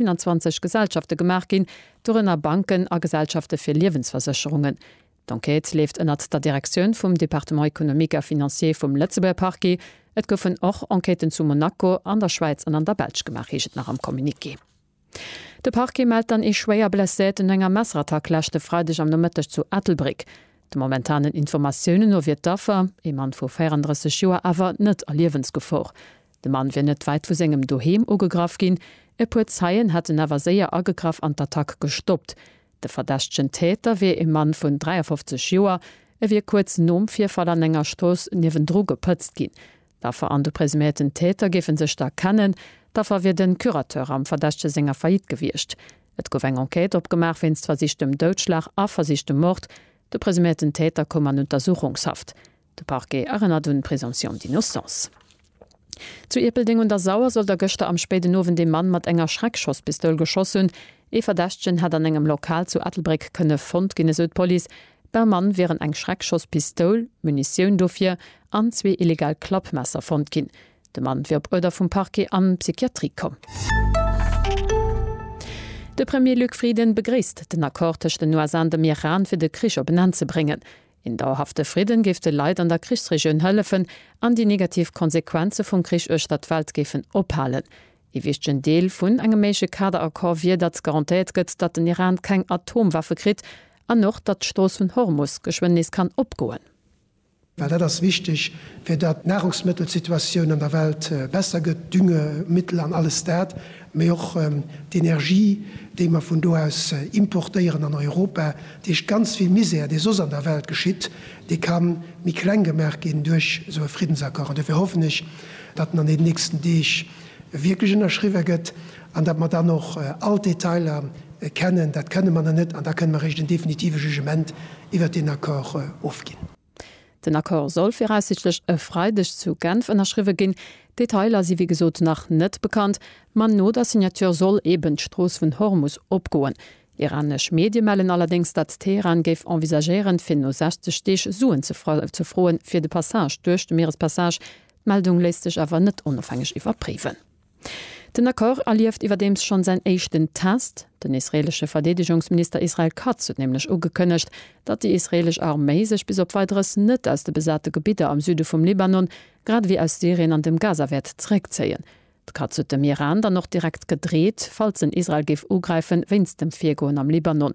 21 Gesellschafte gemaach ginn, dorënner Banken a Gesellschafte fir Liewensversécherungen. D'Enquête leeft ënnert der Direktioun vum Département économique et financier vum Lëtzebuerger Parquet. Et goufen och Enquêten zu Monaco, an der Schwäiz an an der Belsch gemaach, heescht et nach am Communiqué. De Parquet mellt dann ee schwéier Blesséierten no enger Messerattack leschte Freideg am Nomëtteg zu Ettelbréck. De momentanen Informatiounen no wier d'Affer, ee Mann vu 34 Joer, awer net a Liewensgefor. De Mann wier net wäit vu sengem Doheem ugegraff ginn. E puer Zeien hätten awer séier agegraff an d'Attack gestoppt. De verdächtegen Täter wier e Mann vun 53 Joer. E wier kuerz nom Virfall an enger Strooss niewendru gepëtzt ginn. D'Affer an de presuméierten Täter géife sech da kennen. D'Affer wier de Curateur am Verdächtege senger Faillite gewiescht. Et gouf eng Enquête opgemaach wéinst versichtem Doudschlag a versichtem Mord. De presuméierten Täter koum an Untersuchungshaft. De Parquet erënnert un d'Présomption d'innocence. Zu Ierpeldeng un der Sauer soll da gëschter am spéiden Owend ee Mann mat enger Schreckschosspistoul geschoss hunn. Ee Verdächtegen hätt an engem Lokal zu Ettelbréck kënne fonnt ginn, esou d'Police. Beim Mann wieren eng Schreckschosspistoul, Munitioun dofir an zwee illegal Klappmesser fonnt ginn. De Mann wier op Uerder vum Parquet an d'Psychiatrie komm. De Premier Luc Frieden begréisst den Accord tëscht den USA an dem Iran, fir de Krich op en Enn ze bréngen. Een dauerhafte Fridden géif de Leit an der Krichsregioun hëllefen an déi negativ Konsequenze vum Krich uechter d'Welt géifen ophalen. Ee wichtegen Deel vun engem méigleche Kaderaccord wier, datt garantéiert gëtt, datt den Iran keng Atomwaffe kritt an och, datt d'Strooss vun Hormus geschwënn nees kann opgoen. Well dat ass wichteg, fir datt d'Nahrungsmëttelsituatioun an der Welt besser gëtt, Düngemittel an alles dat. mee och d'Energie, déi mer vun do aus importéieren an Europa, dat heescht ganz vill Misär, dee soss an der Welt geschitt, dee ka méi kleng gemaach ginn duerch esou e Friddensaccord. An dofir hoffen ech, datt en an deenen nächsten Deeg wierklech ënnerschriwwe gëtt an datt mer dann och all d'Detailer kennen. Dat kënne mer nach net an da kënne mer eréischt en definitive Jugement iwwert deen Accord ofginn. Den Accord soll viraussichtlech e Freideg zu Genf ënnerschriwwe ginn. D'Detailer si wéi gesot nach net bekannt, ma no der Signature soll eben d'Strooss vun Hormus opgoen. Iranesch Medie mellen allerdéngs, datt Teheran géif envisagéieren, fir no 60 Deeg Suen ze froen, fir de Passage duerch de Mierespassage. D'Meldung léisst sech awer net onofhängeg iwwerpréiwen. Den Accord erlieft iwwerdeems schonn säin éischten Test. Den israeelesche Verdeedegungsminister Israel Katz huet nämlech ugekënnegt, datt déi israeelesch Arméi sech bis op Weideres net aus de besate Gebidder am Süde vum Libanon, grad ewéi aus Syrien an dem Gaza wäert zeréckzéien. De Katz huet dem Iran dann och direkt gedreet, falls en Israel géif ugräifen, wéinst dem Virgoen am Libanon.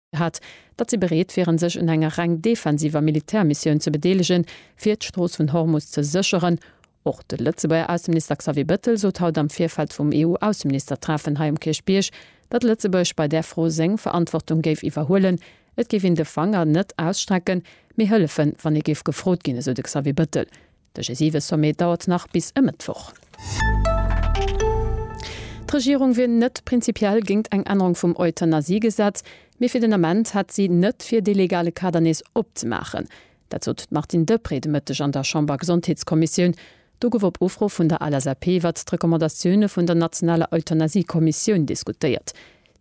hat, datt si bereet wieren sech un enger reng defensiver Militärmissioun ze bedeelegen, fir d'Strooss vun Hormus ze sécheren. Och de Lëtzebuerger Ausseminister Xavier Bettel sot haut am Virfeld vum EU-Ausseministertreffen hei um Kierchbierg, datt Lëtzebuerg bei där Fro seng Verantwortung géif iwwerhuelen. Et géif een de Fanger net ausstrecken, mee hëllefen, wann ee géif gefrot ginn, esou de Xavier Bettel. De G7-Sommet dauert nach bis e Mëttwoch. D'Regierung wier net prinzipiell géint eng Ännerung vum Euthanasiegesetz, mee fir den Ament hätt si net fir, dee legale Kader nees opzemaachen. Dat sot d'Martine Deprez de Mëtteg an der Chambergesondheetskommissioun. Do gouf op Ufro vun der LSAP iwwert d'Recommandatioune vun der nationaler Euthanasie-Kommissioun diskutéiert.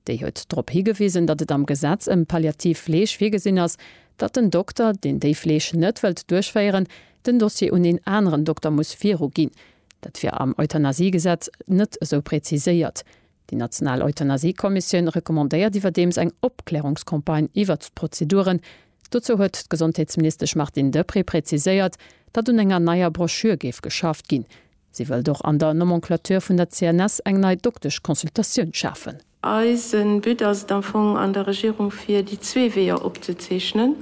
Déi huet drop higewisen, datt et am Gesetz ëm palliativ Fleeg virgesinn ass, datt den Dokter, deen déi Fleeg net wëllt duerchféieren, den Dossier un een aneren Dokter muss viruginn. Dat wier am Euthanasiegesetz net esou präziséiert. Déi national Euthanasiekommissioun recommandéiert iwwerdeems eng Opklärungscampagne iwwert d'Prozeduren. Dozou huet d'Gesondheetsministesch Martine Deprez präziséiert, datt un enger neier Broschür géif geschafft ginn. Si wëllt och an der Nomenclature vun der CNS eng nei Doktesch-Consultatioun schafen. Eise But ass et am Fong an der Regierung fir déi zwee Weeër opzezeechnen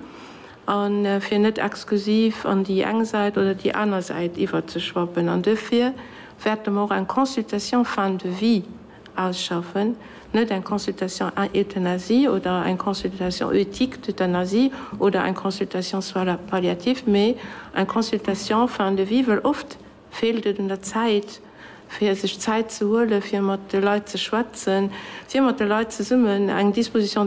a fir net exklusiv an déi eng Säit oder déi aner Säit iwwerzeschwappen. An duerfir wäerte mer och eng Consultation fin de vie ausschaffen, net eng Consultation euthanasie oder eng Consultation éthique d'euthanasie oder eng Consultation soins palliatifs, mee eng Consultation fin de vie, wëll oft, Feelt et un der Zäit, fir sech Zäit ze huelen, fir mat de Leit ze schwätzen, fir mat de Leit zesummen eng Disposition de.